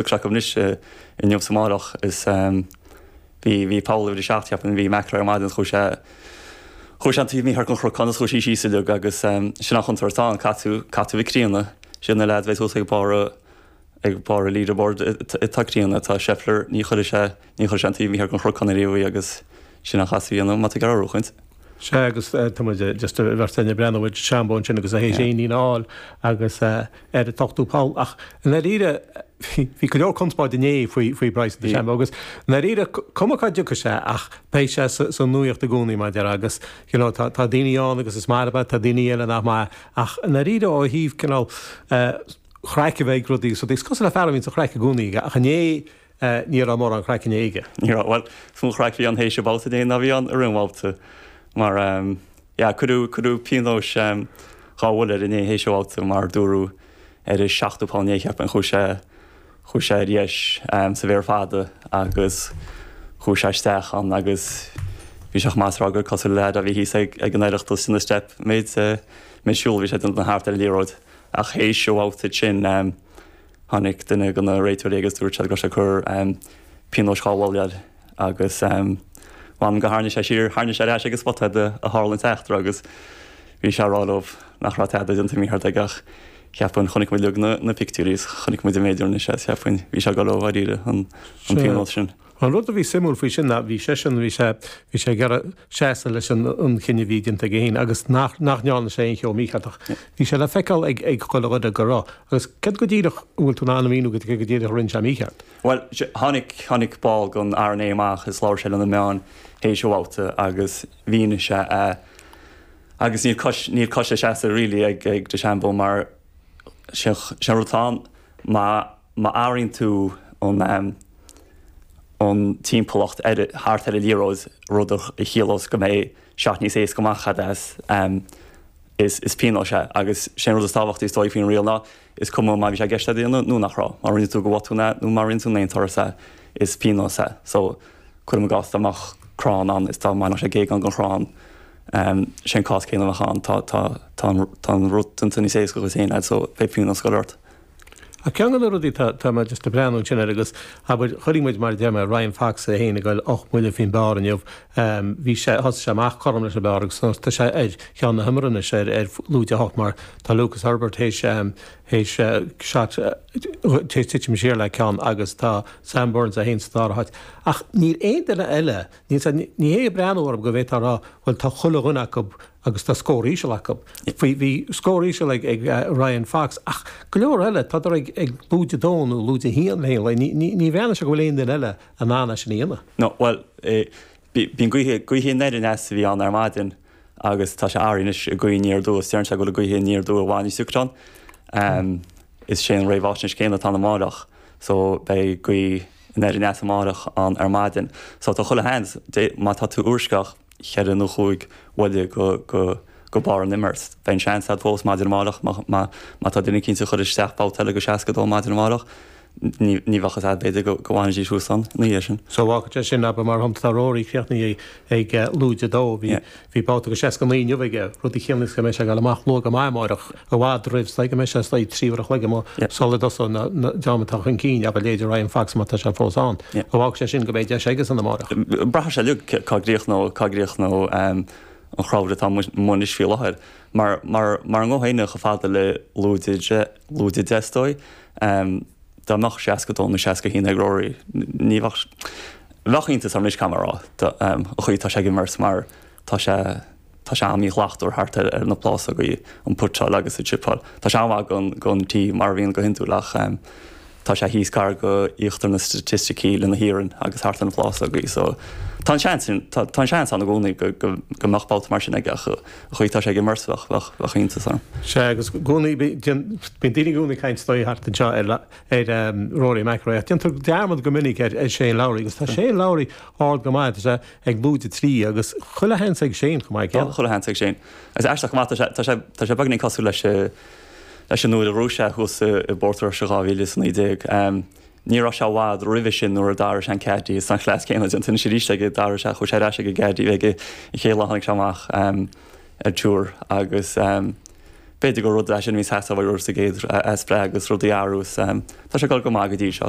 Ag cleachtadh anois inniu 's amárach is bhí, bhí poll uimhir a seacht cheapfainn a bhí McIlroy ar maidin is chuaigh sé, chuaigh sé an taobh mícheart den chnocán is chuaigh sé síos uilig agus sin an chontúirt atá ann, caithfidh, caithfidh tú a bheith críonna, siad na leaids a bheidh thuas ag barr, ag barr an leaderboard, atá críonna, tá Scheffler, ní chuirfidh sé, ní chuirfidh sé an taobh mícheart den chnocán ariamh uaidh agus. Sin an chath a bhí ann, má tá gearradh a chaint. Sea, agus tá muid, just a bheirt eile, ag breathnú ar DeChambeau ansin agus é théis éinín a fháil agus ar an t-ochtú poll. Ach i ndáiríre, bhí go leor conspóid inné faoi Bryson DeChambeau agus i ndáiríre, cuma cá dtiocfaidh sé ach beidh sé sa nuaíocht i gcónaí, mar a déarfá, agus you know tá daoine ann agus is maith leo é, tá daoine eile nach maith. Ach i ndáiríre, ó thaobh cineál chraic a bheith ag rudaí, is cosúil le fear a bhíonn sa chraic i gcónaí ach inné, Eh, ní raibh mórán craic inné aige. Ní raibh, bhuel, is mó craic a bhí ann théis an babhta inné ná bhí ann i rith an bhabhta mar, ehm, yeah, cuireadh, cuireadh pionós, ehm, dhá bhuille air inné théis an bhabhta mar dúradh ar an seachtú poll inné, cheap mé, chuaigh sé, chuaigh sé ar dheis, ehm, sa bhféar fada agus chuaigh sé isteach ann agus bhí sé chomh maith is a rá gur cosúil le leaid a bhí thíos ag, ag an Oireachtas ina steip, méid, eh, méid siúil a bhí sé déanta thart ar an liathróid ach théis an bhabhta sin, ehm, Tháinig duine de na réiteoirí agus dúirt sé go raibh sé ag cur pionós dhá bhuille air agus mh'anam gur tharraing sé siar, tharraing sé ar ais ag an spota áit a tharla an t-eachtra agus bhí sé á rá leo nach raibh tada déanta mícheart aige ach cheapfainn, chonaic muid uilig na pictiúirí is chonaic muid an méid a rinne sé is cheapfainn, bhí sé ag goil dó dháiríre, an pionós sin. An rud a bhí suimiúil faoi sin ná bhí seisean, bhí sé, bhí sé ag iarraidh seasamh leis an an cinneadh a bhí déanta aige féin agus nach nach ndearna sé aon cheo mícheart ach bhí sé le feiceáil ag ag chuile dhuine go raibh. Agus céard go díreach an bhfuil tú in ann a mhíniú go céard go díreach a rinne sé mícheart? Bhuel, tháinig, tháinig ball den R&A amach agus labhair sé le na meáin théis an bhabhta agus mhínigh sé é agus níl cois, níl cois le seasamh really ag ag DeChambeau mar sin, sin an rud atá ann, má, Má athraíonn tú an timpeallacht thart ar an liathróid, rud a chiallós go mbeidh shot níos éasca amach agat as, is pionós é. Agus sé an rud is tábhachtaí is dóigh faoin riail ná, is cuma má bhí sé i gceist é a dhéanamh nó nach raibh, má rinne tú de bhotún é nó má rinne tú in aon turas é, is pionós é. So, cuirim i gcás dá mbeadh crann ann is dá mbainfeadh sé géagán den chrann, sé an cás céanna a bheadh ann, tá an rud déanta níos éasca dhuit féin, so beidh pionós ag goil ort. Ach ceann de na rudaí atá atá mé just ag breathnú ansin air agus, abair, chuirfidh muid, mar a deir mé, Ryan Fox é féin ag goil ocht mbuille faoin bpar inniu, bhí sé, thosaigh sé amach cothrom leis an bpar agus anois tá sé ar cheann na hiomaire anois ar ar lúide a hocht mar tá Lucas Herbert théis théis shot théis titim siar le ceann agus tá Sam Burns é féin sa dara háit. Ach níl aon duine eile, níl siad, níl sé ag breathnú orm go bhféadfá a rá, bhuel, tá chuile dhuine acu, agus tá scór íseal acu. Bhí scór íseal ag Ryan Fox ach go leor eile, tádar ag lúide a dó nó lúide a haon féin leo. Ní bhreathnaíonn sé go bhfuil aon duine eile in ann é sin a dhéanamh. Nó, bhuel, bíonn gaoth, gaoth aniar aneas a bhí ann ar maidin agus tá sé athraithe anois go gaoth aniar aduaidh. Deireann sé go bhfuil an gaoth aniar aduaidh i bhfad níos deacra ann. Is é an réamháisnéis céanna atá ann amárach, so beidh gaoth aniar aneas amárach ann ar maidin. So tá chuile sheans, má tá tú i bhfoisceacht, cheithre nó chúig bhuille go barr an imirt. Beidh an seans agat fós maidin amárach má tá duine eicínt ag cur isteach babhta eile go 62 maidin amárach. Ní bheadh a fhios agat, b'fhéidir, go bhfanfaidís thuas ann ina dhiaidh sin. So fágfaidh sé sin, abair, mar shampla, tá Rory críochnaithe ag lúide a dó, bhí babhta go 69 inniu aige, rud a chiallaíos go mbeidh sé ag gabháil amach luath go maith amárach. i bhfad roimh sula mbeidh sé suas le trí uair a chloig amuigh sula dtosóidh an dream atá chun cinn, abair leithéidí Ryan Fox má tá sé fós ann. Fágfaidh sé sin go mbeidh deis aigesean amárach. Braithfidh sé uilig cá gcríochnóidh, cá gcríochnóidh an chrowd atá amuigh anois faoi láthair. Mar mara ngabhfaidh éinne chomh fada le lúide a deich is dóigh, dá mbeadh seasca dó nó seasca haon ag Rory ní bheadh, bheadh iontas orm anois caithfidh mé a rá, an chaoi atá sé ag imirt mar tá sé, Tá sé an-mhíshlachtmhar thart ar na plásógaí, an putáil agus an tsipeáil. Tá sé an-mhaith den tí, mar a bhíonn go hiondúil, ach tá sé thíos gar go íochtar na staitisticí le na hiarainn agus thart ar na plásógaí so tá an seans ann, tá an seans ann i gcónaí go mbeadh babhta mar sin aige ach an chaoi atá sé ag imirt bheadh iontas orm. Sea, agus i gcónaí bíonn daoine i gcónaí ag caint ar ndóigh thart anseo ar Rory McIlroy ach déantar dearmad go minic ar Shane Lowry agus tá Shane Lowry ard go maith. Ag lúide a trí agus chuile sheans ag Shane chomh maith céanna. Chuile sheans ag Shane. Is aisteach chomh maith, tá sé, tá sé beagnach cosúil leis, leis an uair a raibh sé thuas i bPort Rois i 2019. Ní raibh sé i bhfad roimhe sin nuair a d'athraigh sé an Caddy, is an cleas céanna déanta anois arís aige, d'athraigh sé, chuaigh sé ar ais ag an gCaddy a bhí aige an chéad lá a tháinig sé amach ar Tour agus b'fhéidir gur rud é sin a bhí ag teastáil uaidh air sa gcéad easpa agus rudaí a fhearadh is tá sé ag dul go maith go dtí seo.